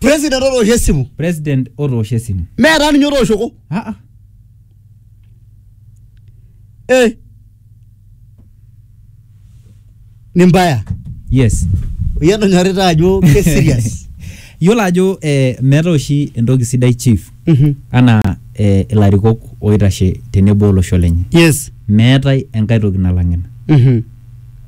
president otoosho esimu president otoosho esimu meetaa ninye otooshoko Ah, ah. eh. ni mbaya yes yedonyarita ajo ke serious yiolo ajo eh, meeta oshi entoki sidai chief anaa eh, ilarikok oitashe tenebo olosho lenye yes meetae enkae toki nalang ina Mhm.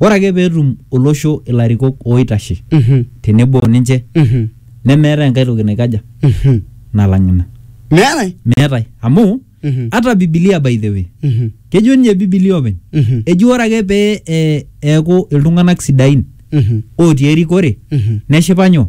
ore ake peetum olosho ilarikok oitashe Mhm. tenebo oninche Mhm. nemeetae enkae toki naikaja Mhm. nalang ina meetae meetae amu Mhm. ata bibilia by the way Mhm. kejo ninye bibilia openy Mhm. eji ore ake pee eh, eeku iltung'anak sidain Mhm. otii erikore Mhm. neshipa nyoo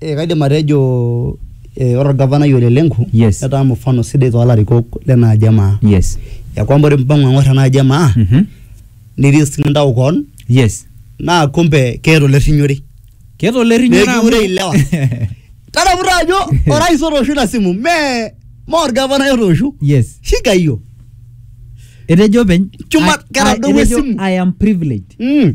Eh, kaidim atejo eh, ore orgavanai ole Lenku Yes. netaa mfano sidai toolarikok lena aji emaa yes ya kwamba ore mpango ang'or ena aji emaa Mhm. nitii sii intau koon yes naa kumbe keeta olerrinyore keeta olerrinyore amu- Meekure ilewa. tadamuta ajo orais otoosho ina simu mee mee orgavanai otoosho yes shiga hiyo etejo openy Chuma, I- I- ketadowua etejo, esimu. i am privileged mm.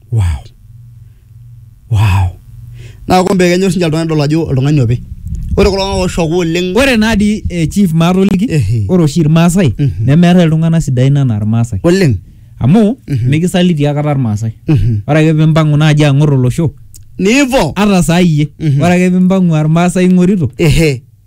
wow wow naa kumbe kenyor sinche oltung'ani dol ajo oltung'ani opi ore kulo tung'anak ooshoku oleng ore naa dii eh, chief maatoliki Ehe. ore oshi irmaasai Mhm. nemeetae iltung'anak sidain anaa irmaasai oleng amu Mhm. mikisaliti akata irmaasai Mhm. ore ake pimpang'u naaji ang'or olosho nivo ata saa iyie Mhm. ore ake pimpang'u aa irmaasai ing'orito ehe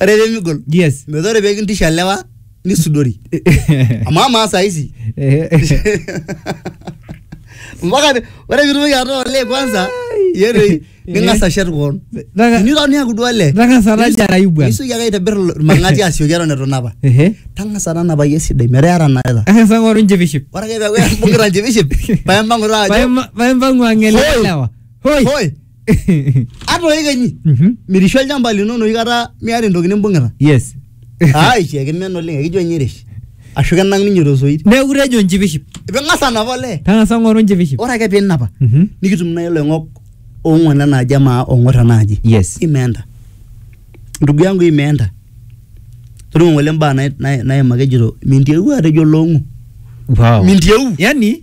ore pemigol yes metaa ore pekintisha lewa nisudori amu amaa saisi mpaka ni- ore pitumoki ataa olee kwanza yetoi ning'as ashet koon Naka- tiniro niaku duo olee Nang'as ara Nisu- jarayu bwana. nisuki ake aitobir irmang'ati asioki eton etu inapa Ehe. tang'asa tanapai esidai metaa era naeta Ang'as ang'oru njipiship. ore ake peaku imbung'ita njipiship paempang'u taa ajo Paema- paempang'u ang'elelewa. Hoi. hoi ata oikenyi Mhm. mirishu olchamba lino enoshi kata miata entoki nimbung'ita yes ai kiakimen oleng ekijo ninye erish ashu kenang ninye tosoit neeku tejo njipiship ping'as anapa olee tang'asa ng'oru njipiship ore ake pinapa Mhm. nikitum nai iloing'ok ong'uan enaaji amaa ong'or enaaji yes imeenda ndugu yangu imeenda toningo ngole mbaa nai- nai- naimaka ejito mintieu atejo long'u wow mintieu yani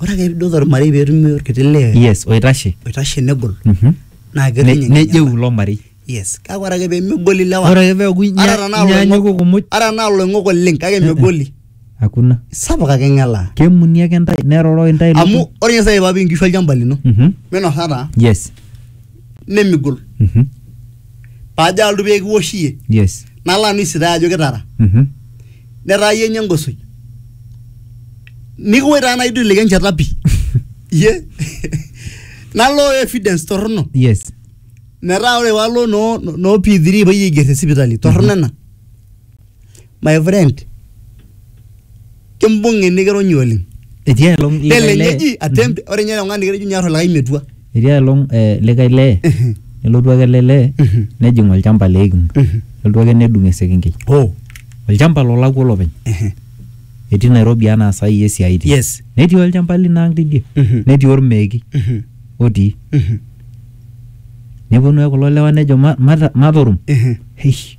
ore ake piidol ormarei peetumi orkiti lee yes oitashe oitashe negol Mhm. naa Ne- ketum nejeu ilo marei yes kake ore ake pemegol ilewa ore ake peeku inya- Ata tenaa inyanyuku iloing'ok- kumuj ata tenaa iloing'ok oleng kake megoli hakuna sapuk ake ng'elaa kemuni ake ntae neroroi ntae amu lukuny. ore ninye sai papi inkishu olchamba lino Mhm. minosata yes nemigol Mhm. paajo aaltu pee kiwosh iyie yes nalo anu isitae ajo kitara Mhm. netaa iyie nye engosoi nikiwoi taa naidu ilike enchata pi iyie nalo evidence torrono yes metaa ore palo noo noo P3 payie aiger te sipitali torrono ena my friend kimbung'i nikironyi oleng etii aelong likae lee telenyeji attempt ore ninye tung'ani nikitejo nyor olikae metua etii aelong eh, likae lee nelotu ake ele lee Mhm. nejing olchamba le iking Mhm. nelotu ake nedung esekenkei oh olchamba lolakua olopeny etii nairobi anaa saa hii esiai itii yes netii olchamba lino ang tidie Mhm. netii ormeeki Mhm. otii Mhm. neponu ake kulo lewa nejo "Ma- mata- matorum Mhm. Eish,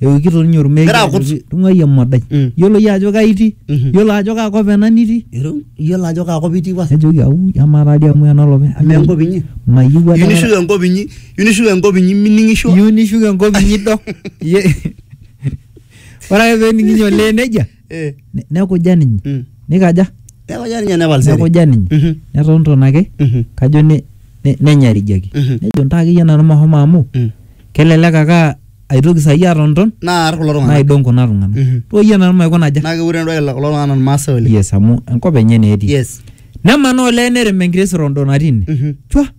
eokito ninye ormeeki Egira akut. ajoki, tung'uai emadai Mm. yiolo iyie ajo kai itii Mhm. yiolo ajo kaa kop ena nitii Ero- iyiolo ajo kaakop itii pasa nejoki au amaa taa dii amu enolopeny amu enkop inyi mayieu iyieu adakata- nishuko enkop inyi iyieu nishuko enkop inyi mining'isho iyieu nishuko enkop inyi dok Iye- ore ake pee ening'inye olee nejia Eh, Ne- nekuja ninye mm. nikaja Neeku jaa ninye nepal seri. nekuja ninye Mhm, neton ton ake mhm, kajo ne- ne- nenyarijiaki mhm, nejo ntaa akeyie nanu mahomo amu mm. kelelek ake aa- aitoki saai atonton Naar kulo tung'anak. naidong kuna tung'anak Mhm. too yie nanu maikuna aja Naa keure entoki kulo tung'anak Irmaasai oleng. yes amu enkop enye naa etii Yes. nemanaa olee nerem enkiti sirondo natii ine Mhm. chwa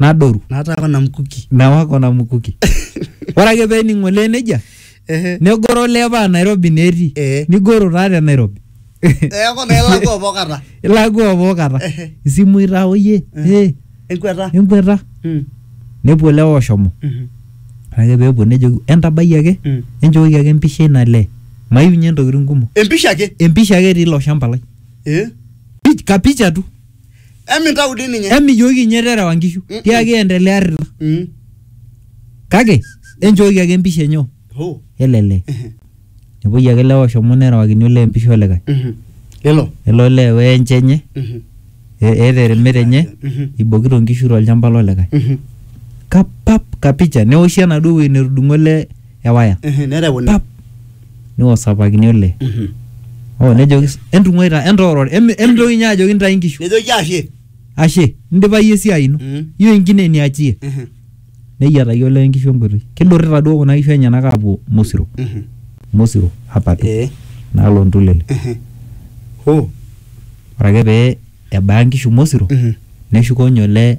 nadoru nataa kona mkuki newa kona mukuki ore ake pening olee nejia ehe negoro olee paa nairobi naa etii Eh. nigoro taa te nairobi eeku naa ilakua pokata ilakua pookata Ehe. isimui taa oyie Eh. eh, enkweta enkweta Mm, nepuo lewa oshomo mhm, ore ake peepuo nejoki entabai ake mm. enchooki ake empisha ina lee maiunye ntokitin kumok empisha ake empisha ake etii ilo shamba lai Eh? Pich- kapicha tu Emintau dii ninye. emijooki inye terewa nkishu Mm-mm. tiaki endelea arrita Mm. kake enchooki ake empisha enye Oh. elele Ehe. nepuoi ake lewa oshomo nerewakini olee empisha olikae Mhm. Lelo. elo olee weenche enye Mhm. e- eeta eremet enye Mhm. ibokito nkishu tolchamba lolikae Mhm. kapap kapicha neoshi enaduo wueji netudung'o ele ewaya Ehe, nereuni. pap niwosapakini olee oh nejoki s- entung'uai taa entooror emi- emitoki ninye ajoki ntae inkishu nejoki ashe ashe indipa iyie esiai ino Mm. iyieu enkine niachie Mhm, neyiataki olee inkishu enkoitoi kidurrita duo kuna kishu enyenak aapuo mosiro mhm, mosiro apapi eh, naalo ntulele mhm. Ho, ore ake pee ebaya nkishu mosiro mhm. neshuko ninye olee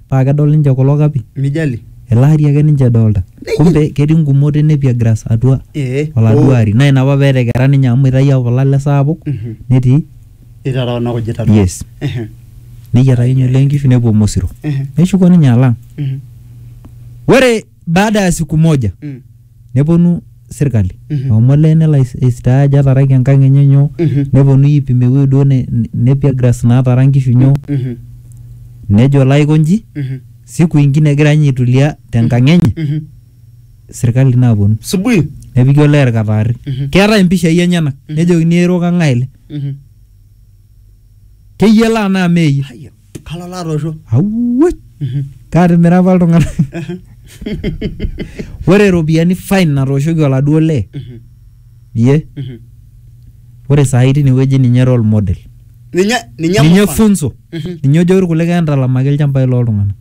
paa kedol ninche kulo kapi. Mijali. Ele ari ake ninche edolta. Kumbe ketii ngumot e nepia grass atua Ee. oladuo ari. Naa ina apa pee etekera ninye amu eitayioki kule ale saapuk Mhm. netii. Eitara kuna kujit atua. Yes. Ehe. Neyiatakinye olee nkishu nepuo Mosiro. Ehe. Neshuko ninye alang. Mhm. Ore baada ya siku moja Mm. Neponu sirkali Mhm. amu olee nelo ais- aistaa ajo etaraki enkang enye nyoo Mhm. neponu aipim ewueji duo ne- ne- nepia grass natara nkishu nyoo Mhm. nejo olo aiko nji Mhm. siku ingine egira ninye aitulia tenkang enye Mhm. sirkali naponu Subui. nepiki olee irkataarri Mhm. keetae impishai enyenak Mhm. nejokini eiro kang'ae ele Mhm. keyiolo anaa meeyie Haya. kalo latoosho awuoi Mhm. kaatimira apa iltung'anak ore iropiyiani fine natooshoki oladuo lee Mhm. ye Mhm. ore saai tinewueji ninye role model ninye ninye ninye mfano. funzo Mhm. ninye ojo irkulikae entalamaki ilchambai loltung'anak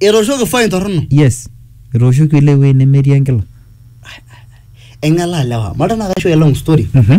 etooshoki fine torrono yes etooshoki ile wueji nemetii enkila eng'elaa lewa malta naa kaisho a long story Mhm.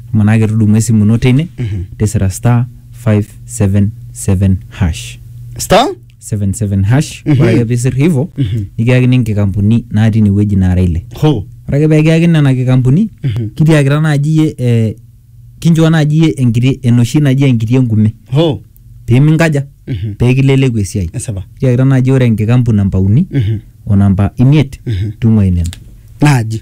Manake tudumu esimu ino teine tisira star 577 hash star 77 hash ore ake pisir hivo nikiyakini nkikampuni natii inewueji naara ile ho ore ake peekiyakini nena kikampuni kitiakita naaji iyie eh, kinchoo naaji iyie enkiti enoshi naji enkiti enkume ho piminkaja Mhm. peekileleku esiai esipa kitiakita naaji ore enkikampu namba uni Mhm. o namba imiet Mhm. tung'uai nena naaji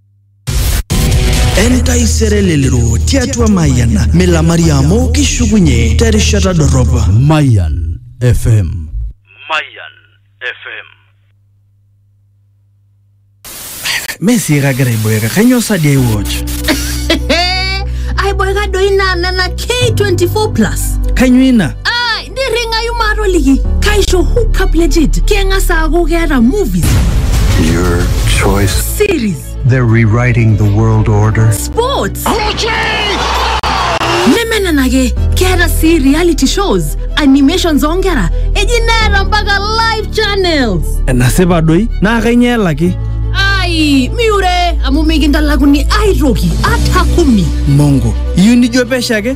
entaisere lelero tiatua mayian milamari amu kishukunye terishata dorrop Mayan FM. Mayan FM. mee sii kagira aiboeka kainyoo sadi ai watch aiboeka doi naa nena k24 plus kainyoo ina nirringayu maatoliki kaisho hookup legit keng'as aaku keeta movies Your choice. series They're rewriting the world order. sports neme nena ake keeta sii reality shows animations oonkera eji neeta mpaka live channels enasipa doi naa kainyoo elaki ai miure amu mikintalakuni aitoki ata kumi mongo iyieu nijo pesho ake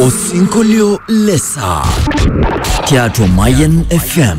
Osinkolio le saa tiatua Mayian FM.